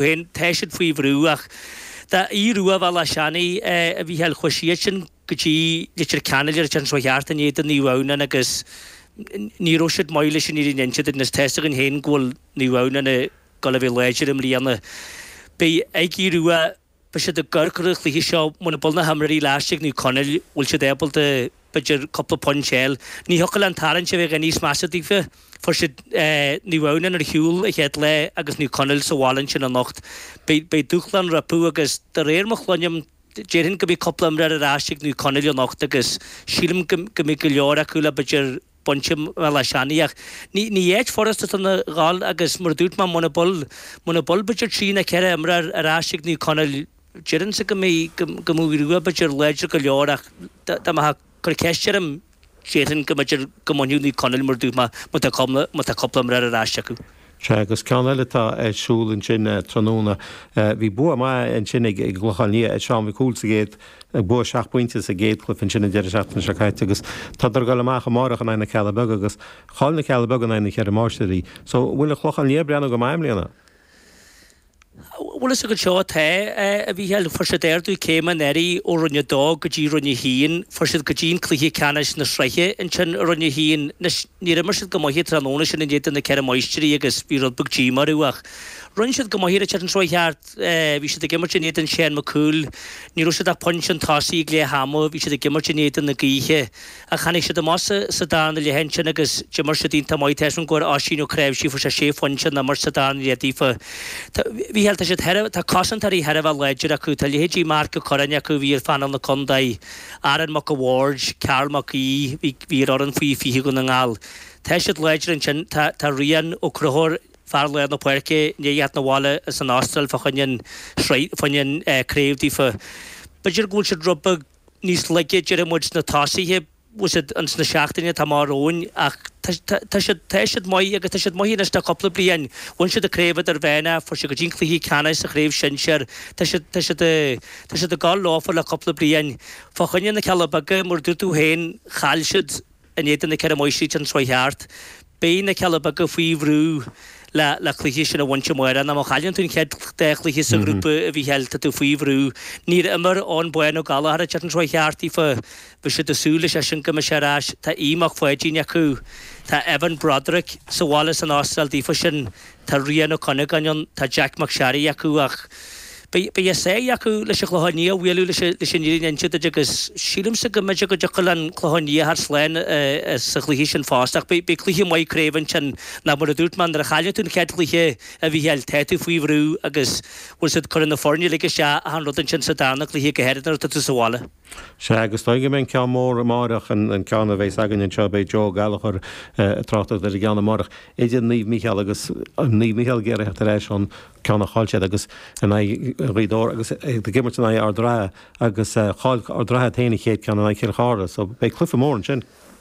Bhain Tá siad faoi bhrú ach tá Aodh Ruadh Bhéal Átha Seanaidh a Mhícheáil chuaigh siadsan go dtí Leitir Ceanainn ar an tseachtain seo thart in éadan Naomh Adhamhnáin agus ní raibh siad maith leis an fhírinne a inse agus tá's againn féin go bhfuil Naomh Adhamhnáin ag dul a bheith láidir i mbliana. Beidh ag Aodh Ruadh beidh siad i gcor chun an chluiche seo muna bhfuil na himreoirí ar ais ag Naomh Conaill bhfuil siad ábalta b'fhéidir cúpla pointe a fháil. Ní thiocfadh leis an tarraingt a bheith níos measa daofa. Fuair siad Naomh Adhamhnáin ar shiúl an chéad lá agus Naomh Conaill sa bhaile ansin anocht. Beidh dúshlán rompu agus de réir mar a chluinim déarfainn go mbeidh cúpla imreoir ar ais ag Naomh Conaill anocht agus sílim go mbeidh go leor acu le b'fhéidir baint i mBéal Átha Seanaidh ach ní áit furasta a ghabháil agus mar a dúirt mé muna bhfuil b'fhéidir trí nó ceithre imreoir ar ais ag Naomh Conaill Deirimse go mbeidh go mbeidh Aodh Ruadh b'fhéidir láidir go leor ach dá mbeifeá ag cur ceist orm déarfainn go mb'fhéidir go mbainfeadh Naomh Conaill mar a dúirt mé má tá cúpla má tá cúpla imreoir ar ais acu. Sea agus ceann eile atá ar siúl ansin tráthnóna. Bhí bua maith ansin ag ag an gClochán Liath ar Seán Mac Cumhaill sa gcéad bua seacht bpointe sa gcéad chluiche ansin an deireadh seachtaine seo caite agus tá siad ag gabháil amach amárach in aghaidh na Cealla Beaga agus chaill na Cealla Beaga in aghaidh na Ceithre Máistrí so bhfuil an Clochán Liath ag breathnú go maith i mbliana? Bhuel, is ag an seo atá a Mhícheáil, fuair siad ardú céime anuraidh ó Roinn 2 go dtí Roinn 1, fuair siad go dtí an cluiche ceannais na sraithe ansin i Roinn 1. Anois, níor imir siad go maith an tráthnóna sin in éadan na Ceithre Máistrí agus bhí rud beag díomá orthu ach rinne siad go maith an tseachtain seo chuaigh thart, bhí siad ag imirt in éadan Seán Mac Cumhaill, ní raibh siad ach pointe chun tosaigh ag leath ama, bhí siad ag imirt in éadan na gaoithe. Ach tháinig siad amach sa darna leath ansin agus d'imir siad iontach maith. Tar éis don gcóir Oisín Ó Cnáimhsí fuair sé sé phointe ón imirt sa darna leath daofa. Tá a Mhícheáil, tá siad thar, tá cosantóirí thar a bheith láidir acu. Tá leithéidí Mark Ó Corráin acu a bhí ar phainéal na Condae, Aaron Mac a' Bhaird, Karl Mac Aoidh, bhí, bhí ar fhoireann faoi fiche Dhún na nGall. Tá siad láidir ansin. Tá, tá Rián Ó Conchúir, fear lár na páirce, i ndiaidh theacht 'na bhaile as an Astráil fá choinne an, fá choinne an, eh, craobh daofa. B'fhéidir go bhfuil siad rud beag. níos laige déarfaidh muid sna tosaithe, bhfuil siad ins na seachtainí atá amach romhainn ach tá tá siad tá siad maith agus tá siad maith anois le cúpla bliain. Bhain siad an chraobh idirmheánach fuair siad go dtí an cluiche ceannais sa chraobh sinsear. Tá siad tá siad tá siad ag gabháil leofa le cúpla bliain. Fá choinne na Cealla Beaga mar a dúirt tú féin chaill siad In éadan na Ceithre Máistrí an tseachtain seo chuaigh thart, beidh na Cealla Beaga faoi bhrú le cluiche sin a bhaint amárach. Ar ndóigh, má chailleann tú an chéad dá chluiche sa ghrúpa a Mhícheáil, tá tú faoi bhrú. Níor imir Eoghan Bán Ó Gallchóir an tseachtain seo chuaigh thart daofa. Bhí siad ag súil leisean go mbeadh sé ar ais. Tá Aodh Mac Pháidín acu. Tá Evan Broderick sa bhaile as an Astráil daofa ansin. Tá Rian Ó Cuinneagáin ann, tá Jeaic Mac Seáraí acu ach beidh a sáith acu leis an Chlochán Liath a bhualadh leis an fhírinne a inse duit agus sílimse go mb'fheidir go dtiocfaidh an Clochán Liath thart slán sa chluiche sin fosta ach beidh cluiche maith craoibhe ansin ach mar a dúirt mé nuair a chailleann tú an chéad chluiche a Mhícheáil tá tú faoi bhrú agus bhfuil a fhios agat cuireann na foirne uilig isteach achan rud ansin sa darna cluiche go háirid nuair atá tú sa bhaile. Sea, agus is dóigh go mbeidh ceann mór amáireach, an ceann a bheas againn anseo, beidh Joe Gallagher ag tráchtacht ar an gceann amáireach idir Naomh Mícheál agus Naomh Mícheál ag iarraidh teacht ar ais ón ceann a chaill siad in aghaidh Ghaoth Dobhair agus ag imirt in aghaidh Ard an Rátha agus chaill Ard an Rátha féin a chéad ceann in aghaidh Chill Chartha so beidh cluiche mór ansin.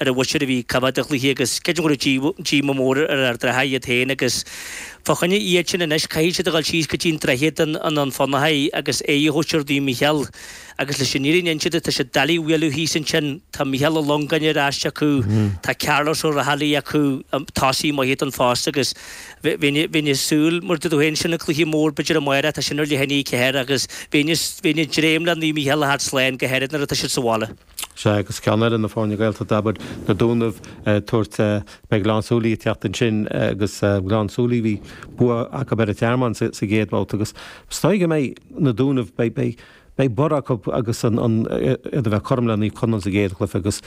Ar an bhóisir a bhí coimhead de chluichí agus sceideal raibh díomá mór ar fhir Ard an Rátha iad féin agus fá choinne iad sin anois caithfidh siad a dhul síos go dtí an Droichead i nDún Fionnachaidh agus aghaidh a thabhairt ar Naomh Micheál agus leis an fhírinne a inse duit tá siad doiligh a bhualadh thíos ansin. Tá Micheál Ó Longáin ar ais acu, tá Cearlos Ó Raghallaigh acu, tosaí maith eadan fosta agus bheinn ag súil mar a dúirt tú féin sin an cluiche mór b'fheidir amáireach tá sin ar leath i ndiaidh 4 agus bheinn ag dréim le Naomh Micheál a theacht slán go háirid nuair atá siad sa bhaile. Sea, agus ceann eile na foirne Gaeltachta, abair, Na Dúnaibh, ag tabhairt beidh Gleann tSúilí ag teacht ansin agus Gleann tSúilí bhí bua acu ar An Tearmann sa gcéad bhabhta agus is dóigh go mbeidh Na Dúnaibh, beidh, beidh barr acu agus an, an, iad a bheith cothrom le Naomh Conaill sa gcéad chluiche agus,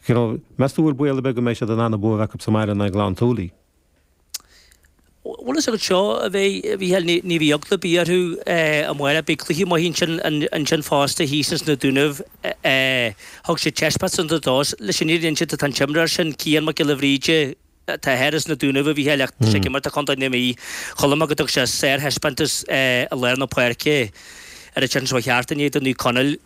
you know, meas tú bhfuil baol ar bith go mbeidh siad in ann an bua a bheith acu sa mbaile in aghaidh Ghleann tSúilí? Bhuel a fhios agat seo a Mhícheál, ní bheidh eagla ar bith orthu sa bhaile, beidh cluiche maith ansin, ansin fosta thíos ins na Dúnaibh thug siad taispeántas an-deas leis an fhírinne a inse duit tá an t-imreoir sin Cian Mac Giolla Bhríde atá thoir ins na Dúnaibh a Mhícheál ach tá sé ag imirt do chontae na Mí chomh maith leis thug sé sárthaispeántas i lár na páirce ar an tseachtain seo caite in éadan Naomh Conaill.